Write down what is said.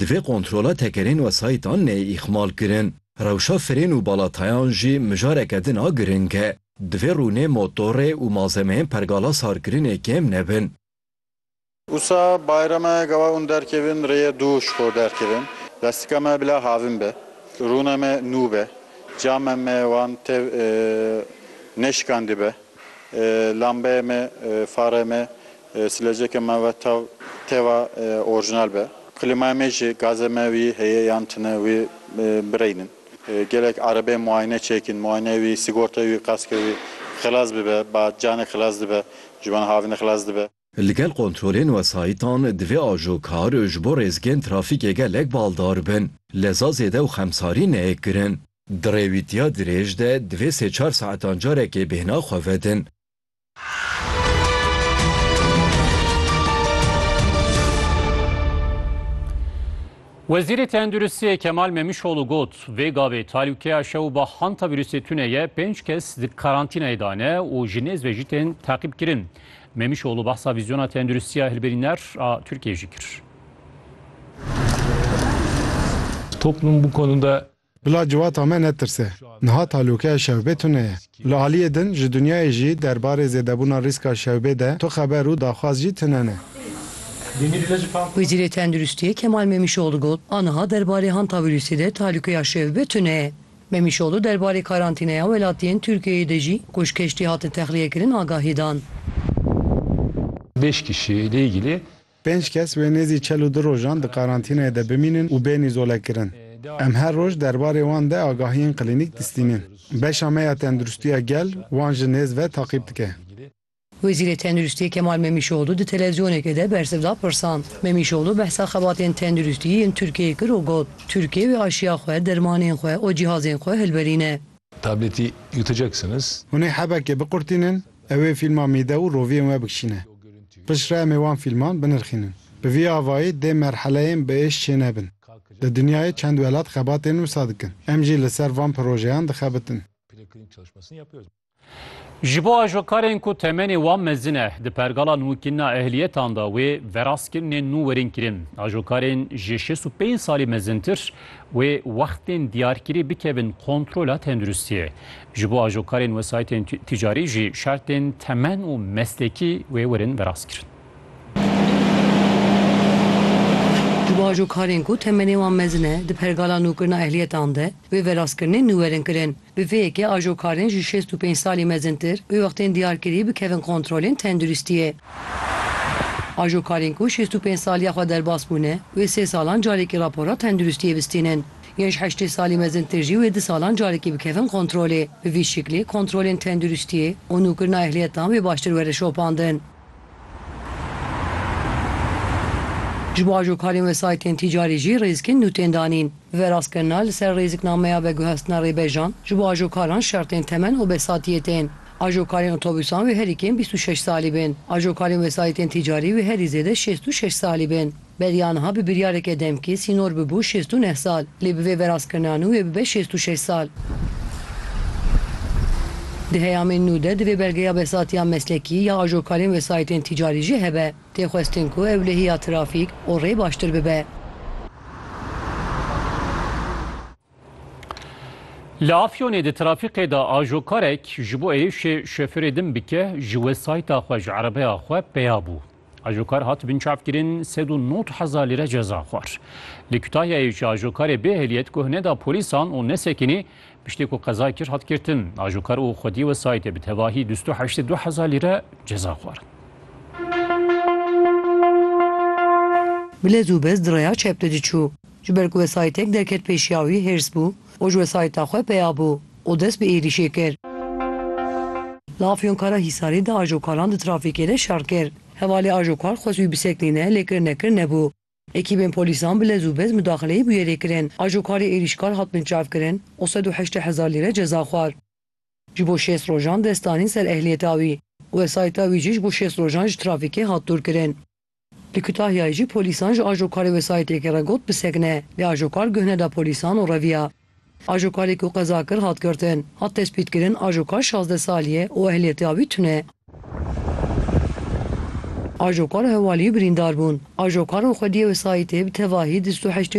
Divê kontrola tekerên wesayîtan neyê îxmalkirin. Rewşa firên û balatayan jî mijareke din a giring e. Divê rûnê motorê û malzemeyên pergala sarkirinê kêm nebin. Usa Bayrame gawa hûn derkevin rêyê dû ji xwe derkevin. Lestika me bila havin be. Rûna me nû be. Cama me wan tev nêşikandî be. Lambeyê me, farê me. Sileceke me ve tav teva orjinal be. Klîmaya me jî gazê me wî heye yan tune wî bireynin. Gelek erebeyên muayene çêkîn, muayeneyê wî, sigortayê wî, kaskê wî xilas bibe. Ba canek xilas dibe, ji wan havînê xilas dibe. Li gel kontrolên wesayîtan divê ajokar ji bo rêzgehên trafîkê gelek baldar bin. Leza zêde û xemsarî neyê kirin. Di rêwîtiya dirêj de divê sê çar saetan carekê bêhna xwe vedin. Wezîrê Tenduristiyê Kemal Memişoğlu got, vê gavê talûkeya şewba hanta vîrusê tune ye pênc kes di karantînayê de ne û ji nêz ve jî tên teqîbkirin. Memişoğlu behsa vîzyona tenduristiya hilberîner a Tirkiyeyê jî kir. Toplum bu konuda Bila civata me netirse. Niha talokeya şewbê tune ye. Li aliyê din ji dinyayê jî derbarê zêdebûna rîska şewbê de tu xeber û daxwaz jî tune ne. Wezîrê Tenduristiyê Kemal Memîşoglû got, Aniha derbarê hantavîrûsê de talokeya şewbê tune ye. Memîşoglû derbarê karantîneya welatiyên Tirkiyeyê de jî ku ji keştî hatin texliyekirin agahî dan. Pêşkîşî li Îgilê Pênc kes wê nêzî çel û du rojan di karantînayê de bimînin û bên îzolekirin. Em her roj derbarê wan de agahiyên klînîk distînin. Beşa me ya Tenduristiya Gel wan ji nêz ve taqîb dike. Wezîrê Tenduristiyê Kemal Memîşoglu di televîzyonekê de bersiv da pirsan. Memîşoglu behsa xebatên tenduristiyê yên Tirkiyeyê kir û got, Tirkiye wê aşiya xwe, dermanên xwe û cîhazên xwe hilberîne. Hûn ê hebekê biqurtînin. Ew ê fîlma mîde û roviyên we bikişîne. Pişt re em ê wan fîlman binirxînin. Bi vî avayî dê merheleyên bi êş çê nebin. Li dinyayê çend welat xebatên wisa dikin. Em jî li ser van projeyan dixebitin. Ji bo ajokarên ku temenê wan mezin e, di pergala nûkînina ehliyetan de wê veraskirnên nû werin kirin. Ajokarên ji şêst û pênc salî mezintir wê wextên diyarkirî bikevin kontrola tenduristiyê. Ji bo ajokarên wesayîtên tîcarî jî şertên temen û meslekî wê werin verastkirin. Ji bo ajokarên ku temenê wan mezin e di pergala nûkirina ehliyetan de wê verastkirinên nû werin kirin. Bi vê yekê ajokarên ji şêst û pênc salî mezintir wê wextên diyar kirî bikevin kontrolên tenduristiyê. Ajokarên ku şêst û pênc saliya xwe derbas bûne wê sê salan carekî rapora tenduristiyê bistînin. Yên ji heştê salî mezintir jî wê di salan carekî bikevin kontrolê. Bi vî şiklê kontrolên tenduristiyê û nûkirina ehliyetan wê baştir were şopandin. Ji bo ajokarên wesayîtên tîcarî jî rêzikên nû tên danîn. Bi vê rastkirina li ser rêziknameya veguhestina rêbejan ji bo ajokaran şertên temen û besatiyê tên. Ajokarên otobûsan wê herî kêm bîst û şeş salî bên. Ajokarên wesayîtên tîcarî wê herî zêde şêst û şeş salî bên. Beriya niha bi biryareke demkî sînor bibû şêst û neh sal, lê bi vê verazkirina nû wê bibe şêst û şeş sal. Di heyamên nû de divê belgeya behsatiya meslekî ya ajokarên wesayîtên tîcarî jî hebe. Tê xwestin ku ewlehiya trafîk û rê baştir bibe. Li Afyonê di trafîkê de ajokarek ji bo êrişê şofêrê din bike ji wesayîta xwe ji erebeya xwe peya bû. Ajokar hat binçavkirin sed û nod hezar lîre ceza xwar. Li Kutahyayê jî ajokarê bê ehliyet guh neda polîsan û nesekinî piştî ku qeza kir hat girtin. Ajokar û xwedî wesayîtê bi tevahî du sed û heştê du hezar lîre ceza xwarin. Bi lez û bez di rêya çep de diçû. Ji ber ku wesayîtek derket pêşiya wî hêrs bû û ji wesayîta xwe peya bû û dest bi êrîşê kir. Li Afyonkara Hîsarê di ajokaran di trafîkê de şer kir. Hevalê ajokar xwest wî bisekinîne lê kir nekir nebû. Ekîbên polîsan bi lez û bez mudaxileyê bûyerê kirin. Ajokarê êrîşkar hat binçavkirin û sed û heştê hezar lîre ceza xwar. Ji bo şêst rojan dest danîn ser ehliyeta wî û wesayîta wî jî ji bo şêst rojan ji trafîkê hat dûrkirin. Di Kutahyayê jî polîsan ji ajokarê wesayîtêkê re got bisekine, lê ajokar guh neda polîsan û reviya. Ajokarê ku qeza kir hat girtin, hat tespîtkirin ajokar şazdeh salî ye û ehliyetê avî tune. Ajokar û hevaliyî birîndar bûn. Ajokar û xwediyê wesayîtê bi tevahî di sed û heştê